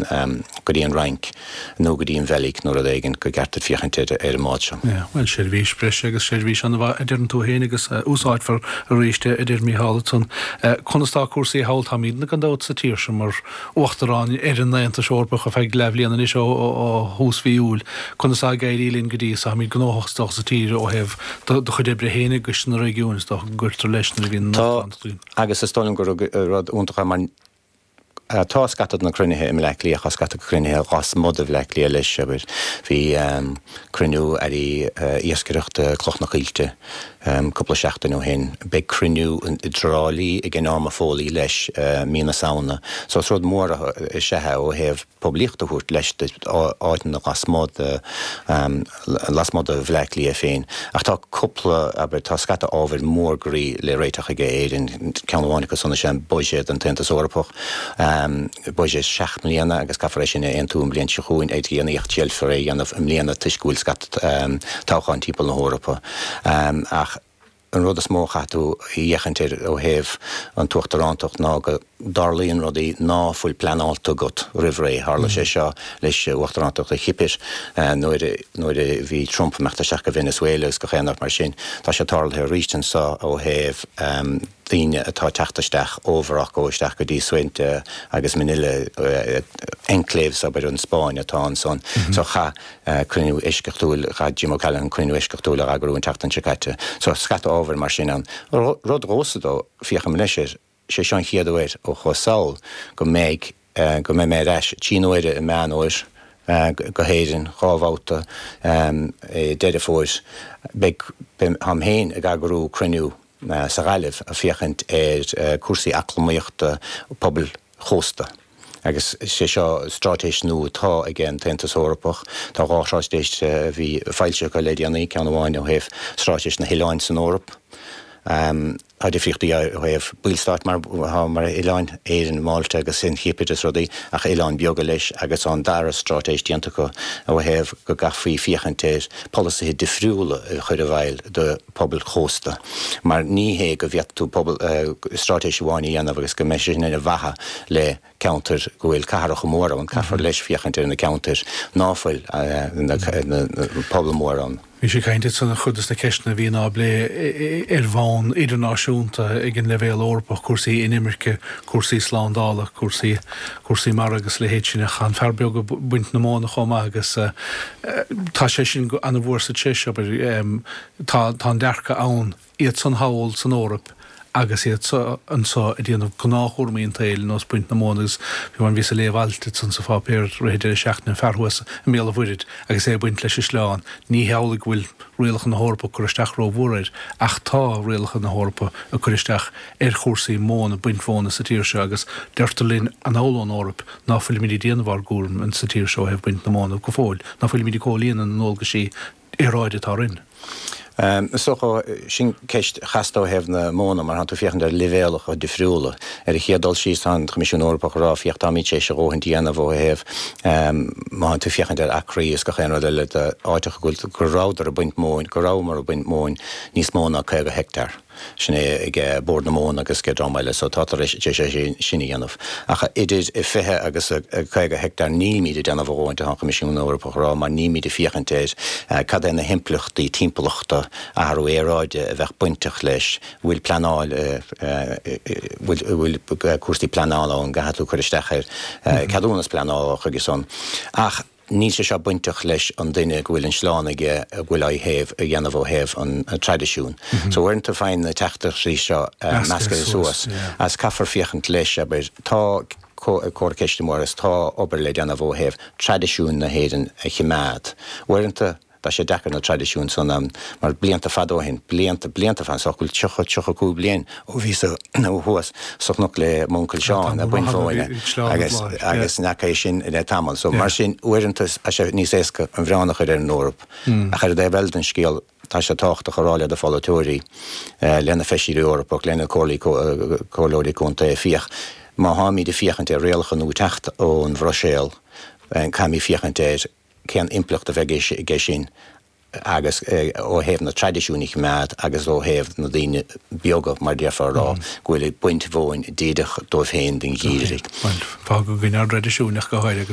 go dtí an Fhrainc nó go dtí an Bheilg nó rud éigin go gceart duit féachaint ar an mbád seo. Yeah, well, seirbhís breise agus seirbhís an-mhaith a deireann tú fhéin agus a úsáidfear arís a deir Mícheál ansan. Conas tá cúrsaí thall? Táimidne gan dabht sa tír seo mar Uachtarán ar an Aontas Eorpach ar feadh leathbhliana anois ó thús mhí Iúil. Conas tá ag éirí linn go dtí so? Táimid gnóthach is dócha sa tír ó thaobh do do chuid oibre fhéin i gCoiste na Réigiúin, is dócha go gcuirtear leis nuair a bhíonn an Tá, Uachtarán agus is dóigh liom gur rud iontach é mar, Tá scata de na cruinnithe i mBleá Cliath, tá scata de chruinnithe lasmuigh de Bhleá Cliath leis, abair. Bhí cruinniú ag Airí Iascaireachta Cloch na Coillte cúpla seachtain ó shin. Beidh cruinniú i dTrá Lí ag Norma Foley leis mí na Samhna. So is rud mór is ea é ó thaobh. poiblíocht a thabhairt leis d'áiteanna lasmuigh de Bhleá Cliath féin. Ach tá cúpla, abair, tá scata ábhair mhór groí le réiteach ag Éirinn. Ceann amháin acu san is ea buiséad an tAontas Eorpach. Buiséad seacht mbliana agus caithfear é sin a aontú an bhliain seo chugainn, ach déanfar iarracht é a dhéanamh i mbliana toisc go bhfuil scata toghcháin timpeall na hEorpa. Ach. An rud is mó a chaithfidh tú a fhéachaint air ó thaobh an tUachtarántacht ná go dtarlaíonn rudaí ná fuil pleanálta agat roimh ré. Tharla sé seo le hUachtarántacht an Chipir nuair nuair a bhí Trump imeacht isteach go Venezuela agus gach aon rud mar sin. Tá sé tarlaithe arís anseo ó thaobh daoine atá teacht isteach ó Mhorocco isteach go dtí Ceuta agus Melilla, enclaves, abair, an Spáinn atá ansan. So chaith. cruinniú eisceachtúil Chaith Jim O'Callaghan cruinniú eisceachtúil a eagrú an tseachtain seo caite. So, scata ábhair mar sin ann. Rud domhsa dó, féachaim leis air, sé seo an chéad uair is cosúil go mbeidh, go mbeidh mé ar ais trí n-uaire i Meán Fómhair go hÉirinn, dhá bhabhta i Deireadh Fómhair. Beidh, beidh, táim féin ag eagrú cruinniú sa Ghaillimh ag féachaint ar cúrsaí eacnamaíochta, pobail, chósta. Agus is é seo stráitéis nua atá ag an tAontas Eorpach. Tá dhá thráitéis a bhí foilsithe acu le déanaí, ceann amháin ó thaobh stráitéis na hoileáin san Eoraip. Tá difríochtaí ó thaobh ballstáit mar atá mar oileáin, Éirinn, Málta agus an Chipir is rudaí, ach oileáin beaga leis, agus tá an dara stráitéis déanta acu ó thaobh go gcaithfí féachaint ar pholasaithe difriúla a chur i bhfeidhm do pobail chósta. Mar ní hé go bhféadfadh tú pobal, stráitéis amháin a dhéanamh agus go mbeidh sé sin ar mhaithe le ceantair go bhfuil cathracha mór ann, caithfear leis féachaint ar na ceantair ná fuil na pobail mhór ann. Bhís ag caint ansin ar chuid de na ceisteanna a bhíonn á bplé ar bhonn idirnáisiúnta ag an leibhéal Eorpach, cúrsaí inimirce, cúrsaí slándála, cúrsaí, cúrsaí mara agus a leithéid sin. Ach tá an fear beag ag baint na móna chomh maith agus tá sé sin ana mhór sa treis, abair. Tá an dearcadh ann, iad san thall san Eoraip agus iad seo anseo ag déanamh gnáthchúramaí an tsaoil, nó ag baint na móna agus fiú, bhí mé ag léamh alt ansan sa pháipéar i rith deireadh seachtaine, an fear thuas i mBéal an Mhuirthid agus é ag baint leis an sleán, ní hamhlaidh go bhfuil rialacha na hEorpa ag cur isteach ró-mhór air, ach tá rialacha na hEorpa ag cur isteach ar chúrsaí móna, baint mhóna sa tír seo agus deirtear linn anuas ón Eoraip ná fuilimid ag déanamh ár gcúraim sa tír seo ó thaobh baint na móna go fóill, ná fuilimid ag comhlíonadh na ndualgaisí aeráide atá orainn. Is dócha, sin ceist chasta ó thaobh na móna, mar tá tú ag féachaint ar leibhéalacha difriúla. Ar an chéad dul síos, tá an Coimisiún Eorpach á rá, féach, táimid tar éis a dhóthaint a dhéanamh ó thaobh, má théann tú ag féachaint ar acraí is gach aon rud eile, na háiteacha go rabhadar ag baint móin, go rabhamar ag baint móin níos mó ná 50 heicteár. Sin é ag Bord na Móna agus ag dream eile so tá tar éis é sin a dhéanamh. Ach idir 20 agus 50 heicteár nílimid ag déanamh a dhóthain, tá an Coimisiún Eorpach á rá mar nílimid ag féachaint ar cad é na himpleachtaí timpeallachta, athrú aeráide, a bheadh bainteach leis. Bhfuil pleanáil, bhfuil cúrsaí pleanála ann, gcaithfidh tú cur isteach ar ceadúnas pleanála chuige sin nó nach. Níl sé seo bainteach leis an duine go bhfuil an sleán aige a bhfuil á thaobh, á dhéanamh ó thaobh an traidisiúin. So uaireanta faigheann na teachtaireachtaí seo meascaithe suas agus caithfear féachaint leis, abair, tá ceist amuigh agus tá obair le déanamh ó thaobh traidisiúin na hÉireann a chimeád. Uaireanta. Tá sé deacair na traidisiúin san, mar blianta fada ó shin, blianta, blianta fada, is dócha go bhfuil tríocha, tríocha cúig bliain ó bhíos thuas sa chnoc le m'uncail Seán, ag baint mhóin agus, agus n'fheaca é sin le tamall. So, mar sin, uaireanta tá sé níos éasca an milleán a chur ar an Eoraip, ach ar an dtaobh eile den scéal, tá sé tábhachtach a rá leis na polaiteoirí, leis na feisirí Eorpach, leis na comhairlí, comhairleoirí contae, féach, má tháimid ag féachaint ar rialacha nua ag teacht ón Bhruiséal, caithfimid féachaint ar, cén impleacht a bheidh aige sin agus ó thaobh na traidisiúin a choimeád agus ó thaobh na daoine beaga mar déarfá a rá go bhfuil ag baint mhóin díreach dóibh féin don gheimhreadh. Bhuel, fágadh go ndearnadh raidiisiúineach go háirithe.